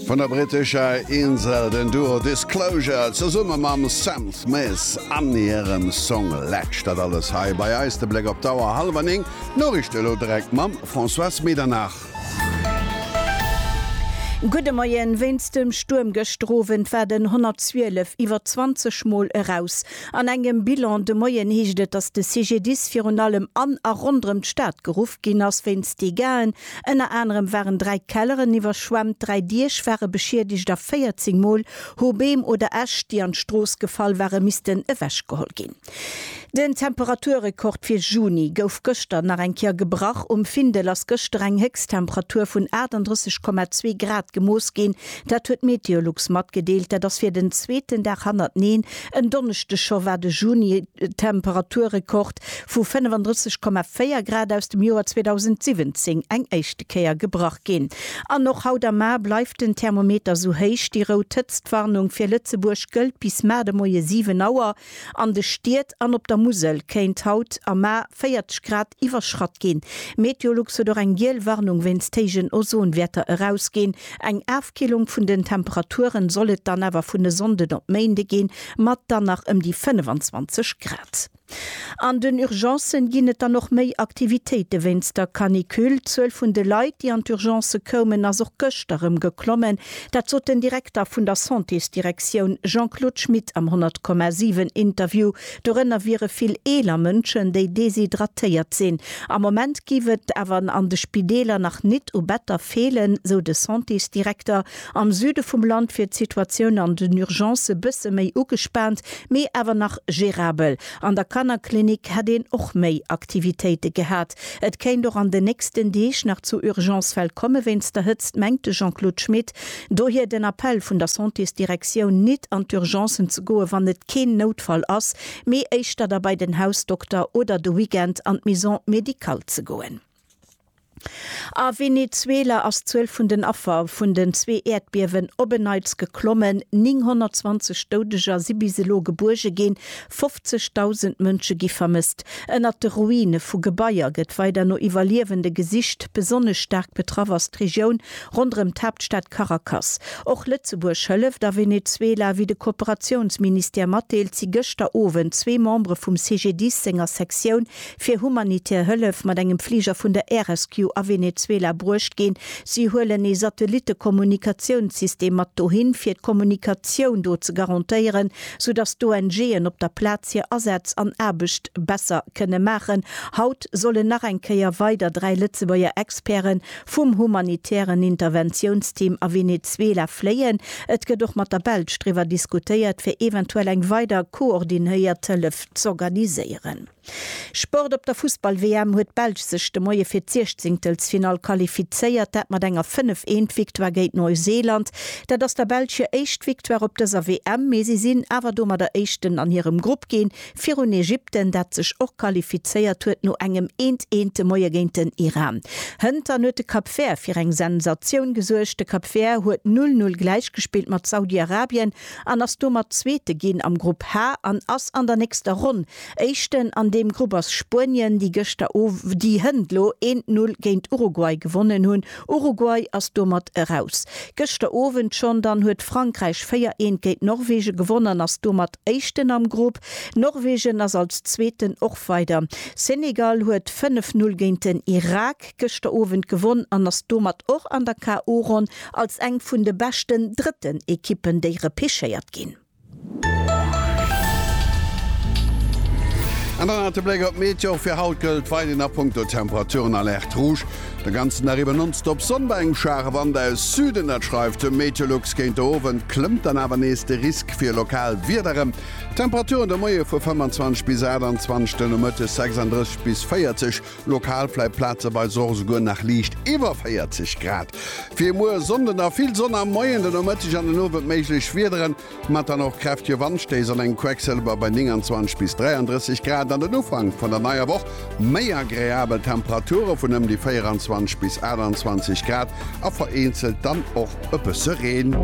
Vun der brittescher Insel den Duo Disclosure zesumme mam Sam Smith an hirem Song Latch. Dat alles hei bei eis, de Bléck op d'Auer, hallwer néng. D'Noriichte elo direkt mam Françoise Medernach. Gudde Moien. Wéinst dem Stuerm gëschter Owend war den 112 iwwer 20 Mol eraus. An engem Bilan de Moien heescht et, dass de CGDIS virun allem an a ronderëm d'Stad geruff ginn ass wéinst Degaen, Ënner anerem waren dräi Kelleren iwwerschwemmt, dräi Diech ware beschiedegt a 14 Mol hu Beem oder Äscht, déi an d'Strooss gefall ware, missten ewechgeholl ginn. Den Temperaturrekord fir Juni gouf gëschter nach eng Kéier gebrach. Um Findel ass gëschter eng Héchsttemperatur vun 38,2 Grad gemooss ginn. Dat huet Meteolux matgedeelt. Dat ass fir den zweeten Dag hannerteneen En Donneschdeg scho war de Juni-Temperaturrekord vu 35,4 Grad aus dem Joer 2017 eng éischte Kéier gebrach ginn. An och haut am Mar bleift den Thermometer sou héich. Déi rout Hëtztwarnung fir Lëtzebuerg gëllt bis mar de Moie 7 Auer. An de Stied an op der Musel kéint haut am Mar 40 Grad iwwerschratt ginn. Meteolux huet och eng giel Warnung wéinst héijen Ozonwäerter erausginn. Eng Afkillung vun den Temperaturen soll et dann awer vun e Sonnden op Méinde ginn, mat dann nach ëm déi 25 Grad. An den Urgencen ginn et dann och méi Aktivitéite wéinst der Canicule. D'Zuel vun de Leit, déi an d'Urgencë koumen, ass och gëschter erëm geklommen. Dat sot den Direkter vun der Santésdirektioun Jean-Claude Schmit am 100,7 Interview Dorënner wiere vill eeler Mënschen, déi deshydratéiert sinn. Am Moment giff et awer an de Spideeler nach nit u Better feelen, sou de Santésdirekter. Am Süde vum Land wier d'Situatioun an den Urgencë bësse méi ugespaant, mee awer nach gérabel. An der Kannerklinik hätt een och méi Aktivitéite gehat. Et kéint och an den nächsten Deeg nach zu Urgencefäll komme wéinst der Hëtzt, mengt de Jean-Claude Schmit. Dohier den Appell vun der Santésdirektioun, nit an d'Urgencen ze goen, wann et keen Noutfall ass, mee éischter da bei den Hausdokter oder de Weekend an d'Maison médicale ze goen. A Venezuela ass d'Zuel vun den Affer vun den zwee Äerdbiewen op en Neits geklommen. 920 Doudeger si bis elo gebuerge ginn, 50.000 Mënsche gi vermësst. Ënnert de Ruine vu Gebaier gëtt weider no Iwwerliewende gesicht. Besonnesch staark betraff ass d'Regioun ronderëm d'Haaptstad Caracas. Och Lëtzebuerg hëlleft. A Venezuela, wéi de Kooperatiounsministère matdeelt, si gëschter Owend zwee Membere vum CGDIS senger Sektioun fir humanitär Hëllef mat engem Fliger vun der Air Rescue a Venezuela bruecht ginn. Si huelen ee Satellittekommunikatiounssystem mat dohin, fir d'Kommunikatioun do ze garantéieren. sou datt d'ONG'en op der Plaz hir Asätz an Aarbecht besser kënne maachen. Haut sollen nach eng Kéier weider dräi Lëtzebuerger Experte vum humanitären Interventiounsteam a Venezuela fléien. Et gëtt och mat der Belsch driwwer diskutéiert, fir eventuell eng weider koordinéiert Hëllef z'organiséieren. Sport Op der Fussball-WM huet d'Belsch sech de Moie fir d'Siechzéngtelsfinall qualifizéiert, dat mat enger 5 Eent Victoire géint Neuseeland. Dat ass der Belsch hir éischt Victoire op dëser WM, mee si sinn awer domadder Éischten an hirem Grupp ginn, virun Ägypten, dat sech och qualifizéiert huet no engem Eent, Eent de Moie géint den Iran. Hëntern huet de Cap Vert fir eng Sensatioun gesuergt, de Cap Vert huet 'Null Null' gläichgespillt mat Saudi-Arabien an ass domat Zweete ginn am Grupp H an ass an der nächster Ronn Éischten an deem Grupp ass Spuenien, déi gëschter Ow déi hënt lo eent Null géint Uruguay gewonnen hunn. Uruguay ass domat eraus. Gëschter Owend schonn dann huet Frankräich véier eent géint Norwegen gewonnen an ass domat Éischten am Grupp. Norwegen ass als Zweeten och weider. Senegal huet fënnef Null géint den Irak gëschter Owend gewonn an ass domat och an der KO-Ronn als eng vun de beschten drëtten Ekippen, déi repechéiert ginn. An dann nach de Bléck op d'Meteo, och fir haut gëllt weiderhin a punkto Temperaturen Alerte rouge. De ganzen Dag iwwer nonstop Sonn bei engem schwaache Wand aus Süden, dat schreift de Meteolux. Géint de Owend klëmmt dann awer nees de Risk fir lokal Wieder erëm. Temperaturen de Moie vu 25 bis 28, de Nomëtte 36 bis 40. Lokal vläit plazeweis och esouguer nach liicht iwwer 40 Grad. Fir muer e Sonnde nach vill Sonn am Moien, den Nomëtteg an den Owend méiglech Wiederen, mat dann och kräftege Wandstéiss an engem Quecksëlwer bei 29 bis 33 Grad. An den Ufank vun der neier Woch méi agreabel Temperature vun ëm déi 24 bis 28 Grad a vereenzelt dann och e bësse Reen.